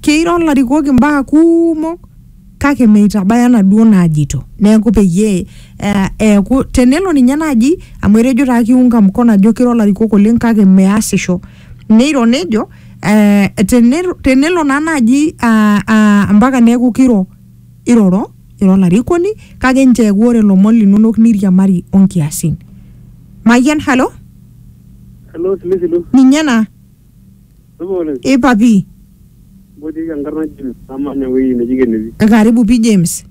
Keiro ilarikok imbaa kumok kake meitabaya naduo naajito. Neeku peyie eh, eeku tenelo ninye naaji amu etejo taa kiunga mkono ajo keiro ilarikok oleng kake measisho. Neiro nejo eh, tenelo, tenelo naa naaji ah, ah, ampaka neeku kiro iroro ira olarikoni kake nchoo eeku ore ilomon linonok niriamari onkiasin. Mayian, halo? Hello, Silisilu. Ninye ena. Supa oleng. Ipa pii. Mbotieki enkarna James namanya ewueji neji Kennedy. Karibu pii James.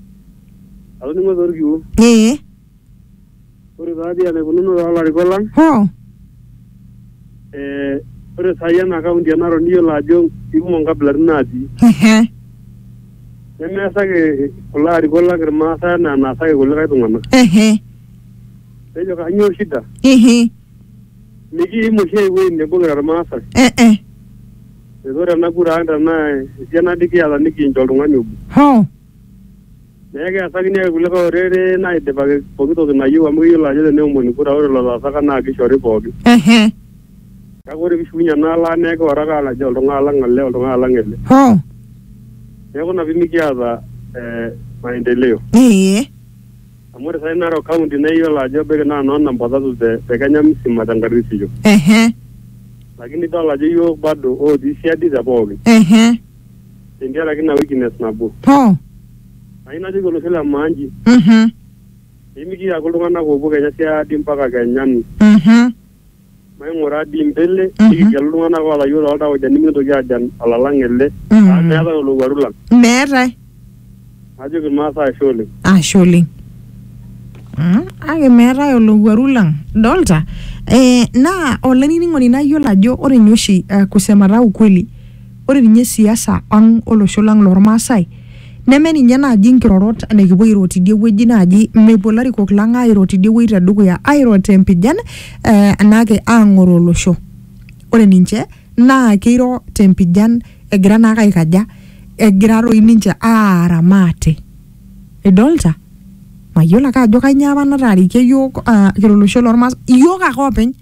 Atoning'o torkiu. Ee. Ore taadi enaikununo toolarikok lang. Hoo. Ee ore saai ena kaunti e Narok niyiolo ajo ikumok inkabilaritin natii. Ehe. Nemeesaki kulo arikok lang irmaasai enaa enaasaki kulikae tung'anak. Ehe. Nejo kanyoo shida? Ehe. Mikiim oshi ai wueji nebo kira Irmaasai. Eh eh. Neeku ore ena kura ang tenaa esiana dii kiata nikincho oltung'ani obo. Hoo. Neeku keasakini ake kulikae orere naidipaki pooki toki nayieu amu keyiolo ajo teneomoni kura ore lelo oasaka naa kishori pooki. Ehe. Kake ore piishukunye enaalo ang naa ekioro ake ajo oltung'ani lang ele, oltung'ani lang ele. Hoo. Neeku ina pimikiata eh maendeleo. Ee. Amu ore sai Narok County naa iyiolo ajo ebaiki naa noo namba tatu te, te Kenya msima te nkarisisho. ehe Lakini idol ajo iyiook bado ootii siadi te pooki. ehe Tentiaraki ina weakness nabo. hoo Ayieu najoki olosho le maa nji, mhm pee mikiaku iltung'ana oopuo kenya siadi mpaka kenya ni. mhm Maing'ura dii mbele, Mhm. nikigelu iltung'ana oolayiolo oltauja nimikintoki aajan olalang ele, Mhm. amu meetae olowuaru lang. Meetae. Najoki Ilmaasai ashe oleng. Ashe oleng. Mm, Kake meetae olowuaru lang. Dolta? Eh, naa olainining'oni nayiolo ajo ore ninye oshi eh, kusemata ukweli Ore ninye siasa ang olosho lang loo Lmaasai neme ninye naaji nkirorot nikipuo airo tidie wueji naaji, mepuo larikok lang aairo tidie wueji te dukuya aairo te mpijan enaa ake aang'oroo olosho. Ore ninche naa keiro te mpijan egira naa ake aikaja, egira doi ninche aara maate. Nidolita? Mayiolo ake ajo kainyoo apa nataarikie iyiok kira olosho loo Lmaasai, iyiok ake oopeny.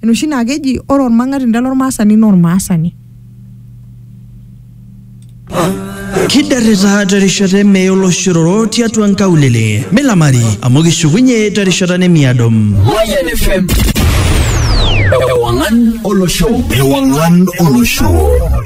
enoshi naa keji ore ormang'atinda lormaasani naa ormaasani. Kidarrita terishata e mee oloshororo tiatua nkaulele. Milamari amu kishukunye terishata nemiado. Mayian FM. Ewangan olosho. Ewangan olosho.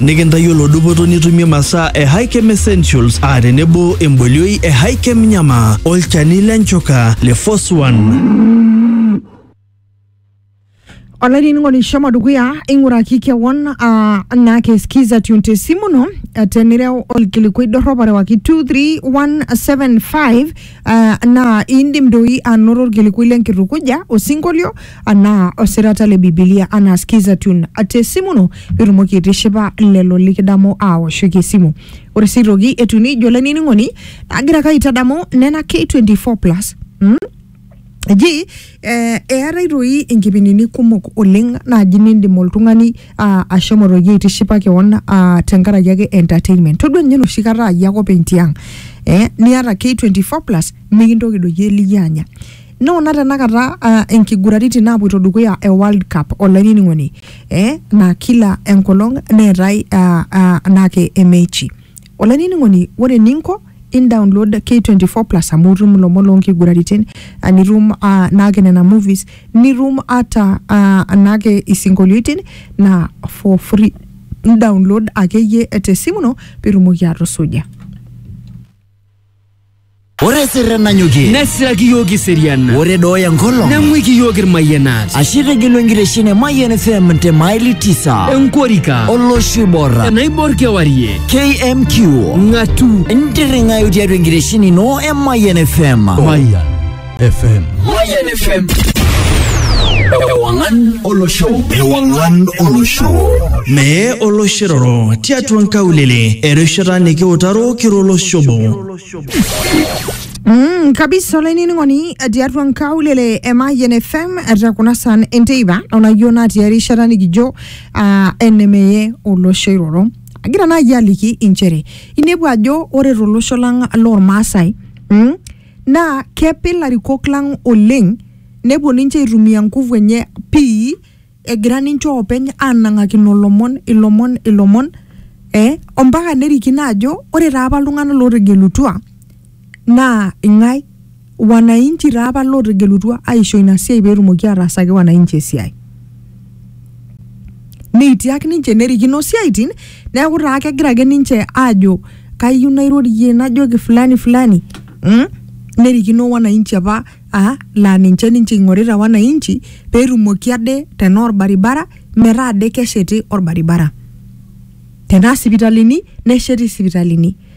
Nikintayiolo dupoto nitumie masaa e Hikem Essentials aa tenebo embolioi e Hikem Nyama, olchani le nchoka le Foswan. olainining'oni shomo dukuya ing'uraki kewon ah, naa keskiza tune te simu ino eh, tenireu olkilikuai dorrop arewaki 23175 Ah, naa iindim doi anoto olkilikui le nkitukuja, osinkolio, anaa osirata le Bibilia anaa Skiza Tune te simu ino pee itumoki aitishipa lelo likidamu aawoshoki esimu. Ore sii aitoki etiu nijo olainining'oni agira ake aitadamu nena K24+ mm eji Eh, eetae doi inkipindini kumok oleng naaji nindim oltung'ani ah, ashomo doi aitishipa kewon ah, tenkaraki ake entertainment todua ninye enoshi kata ayie ake openy tiang eh, niata K24 plus mikintoki doi eliyio anya noona tenakata ah, inkiguraritin naapuoito dukuya e World Cup olainining'oni eh, naa kila enkolong neetae ah, ah, naake emechi olainining'oni ore eninko indownload K24 plus amu itum ilomon loonkiguraritin ah, nitum ah, naake nena movies nitum ata ah, naake isinkolioitin na for free indownload akeyie tesimu ino pitumoki atusuja Ore sirre nanyokie, nesiraki iyiook iserian ore dooya enkolong, neng'uiki iyiook irmayianat ashe tegelu enkitesheni e Mayian FM te maili tisa, enkorika olosho oibor. enaibor kewarie KMQ ng'atu ntiring'ayu tiatua enkitesheni ino e Mayian FM. Mayian FM. Mayian FM. Ewang'an olosho. Ewang'an olosho. Mee oloshiroro tiatua nkaulele erishata nikiutaro kiro olosho obo. Mm, kabisa olainining'oni tiatua nkaulele e Mayian FM etaa kuna saan enteipa onayieu natii erishata nikijo ah, enemeye olosho iroro agira naaji aliki inchere inepu ajo ore tolosho lang lormaasai mm, naa kepe ilarikok lang oleng nepuo ninche aitumia nguvu enye pii egira ninche oopeny anang'akino ilomon ilomon ilomon eh, ompaka nerikino ajo ore taapa iltung'anak lootegelutua Naa ing'ae? Wananchi taa apa lootegelutua aisho ina siai pee etumoki aataasaki wananchi esiai. Neitiak ninche nerikino isiaitin neeku taa kegira ake ninche aajo kayieu nairorie najoki fulani fulani mh nerikino wananchi apa aa laa ninche ninche eing'orita wananchi pee etumoki ade tenaa orbaribara metaa ade kesheti orbaribara. Tenaa sipitalini nesheti sipitalini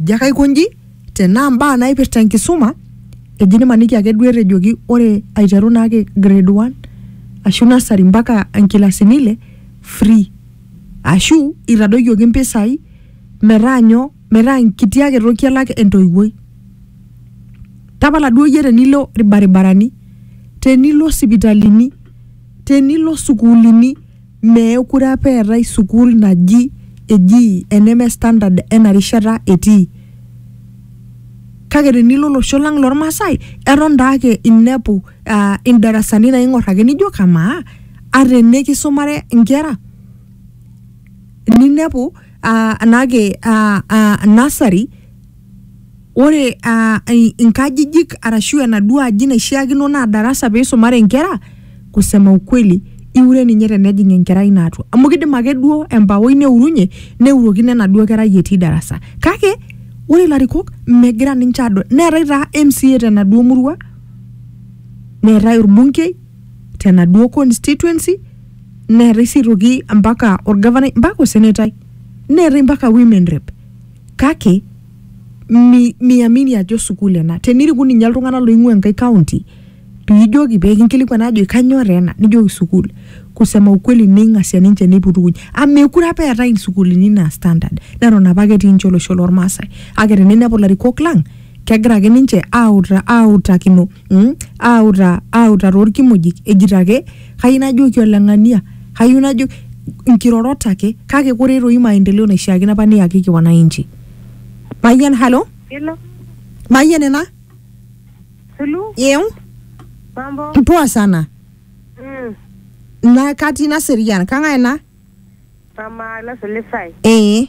Ejo ake aiko nji, tenaa mbaa naipirta enkisuma, eji nimaniki ake duo etejoki ore aiteru naake grade one ashu nursery mpaka nkilasini ile free. Ashu itadoyioki mpisai metaa nyoo, metaa enkiti ake toki elak entoiwuoi. Tapala duo iyie tenilo ilbaribarani, tenilo sipitalini, tenilo sukuulini. Meekure apa eetae sukuul naji eji eneme standard ena rishata etii. Kake tenilo olosho lang lormasae eton daake inepu uh indarasani naing'or ake nijo kamaa ata ene kisumare inkera ninepu uh naake uh nursery Ore aa inkajijik arashu enaduo aji naishiakino naa darasa peisumare inkera, kusema ukweli iure ninye tenejing enkerai ino atua. Amu kidim ake duo empawoi neurunye, neurokino enaduo kerai etii darasa. Kake, ore ilarikok megira ninche adol. Neetae taa MCA tenaduo murua, neetae orbunkei tenaduo constituency, neetae si aitoki ampaka orgavanai, ampaka osenetai. Neetae ampaka women rep. kake mi, miamini ajo sukuul ena teniriku ninye iltung'anak loing'ua enkae county piijoki pekinkilikuan ajo kanyoo taa ena nijoki sukuul kusema ukweli neing'asia ninche neiputukuny amu mekure apa eetae insukuulini ina standard neton apake etii ninche olosho lormasae kake teninepu ilarikok lang kegira ake ninche auta autakino mm, auta auta toorkimojik ejito ake kayieu najoki ole ng'ania kayieu najo nkirorot ake kake kore toi maendeleo naishiakino apa neyakiki wananchi mayian halo Hello, mayian ena Sulu, yeu mambo? poa sana Mm, na katii naserian kang'ae ena mama Loso Lisai. ee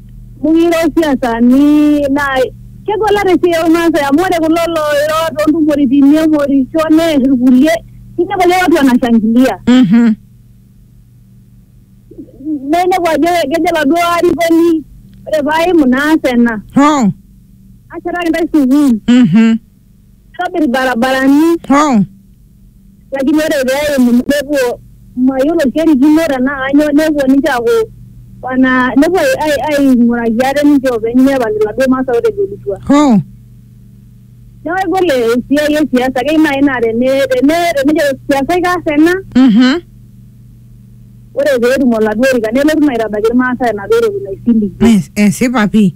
Mukiro siasani naa kegol ata esiai olmaasai amu ore kulo looiro toontumoritin nemorisho neer irkulie ninepu ajo watu wanashangilia Mhm. naa inepu ajo kejo oladuo arikoni ore paaimu naas ena Oh. ashetaki intae sukuul Mhm. kitobir ilbarabarani Oh. lakini ore pee eimu nepuo mayiolo kerikino tenaa kanyoo nepuo ninche aaku wana nepuo ai- ai- aing'uraki ate ninche oopeny nepal iladuo masaa ootegelutua. Oh. Neeku egol esiai e siasa keyieu naaji naa tene tene tenejo siasa ikaas ena Mhm. ore pee etum oladuo orika nelotu naa aitabaiki ilmaasai enaduo toki naisiligie. Es- Esipa pii.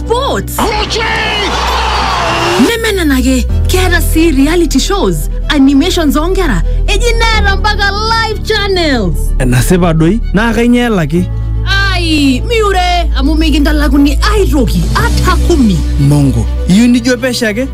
sports nemenenake keeta sii reality shows animations oonkera eji neeta mpaka live channels enasipa doi naa kainyoo elaki ai miure amu mikintalakuni aitoki ata kumi mongo iyieu nijo pesho ake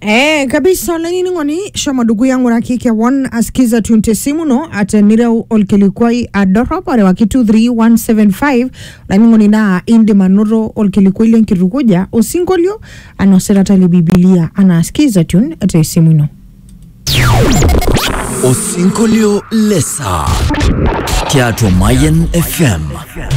Eh, kabisa olainining'oni shomo dukuya ng'uraki kewon asikiza tune tesimu ino ate nireu olkilikuai adorrop orewaki 23175 olainining'oni naa indim anoto olkilikuai lenkitukuja osinkolio anaa osirata le bibilia anaa asikiza tune tesimu ino Osinkolio Lesa. Tiatua Mayan FM.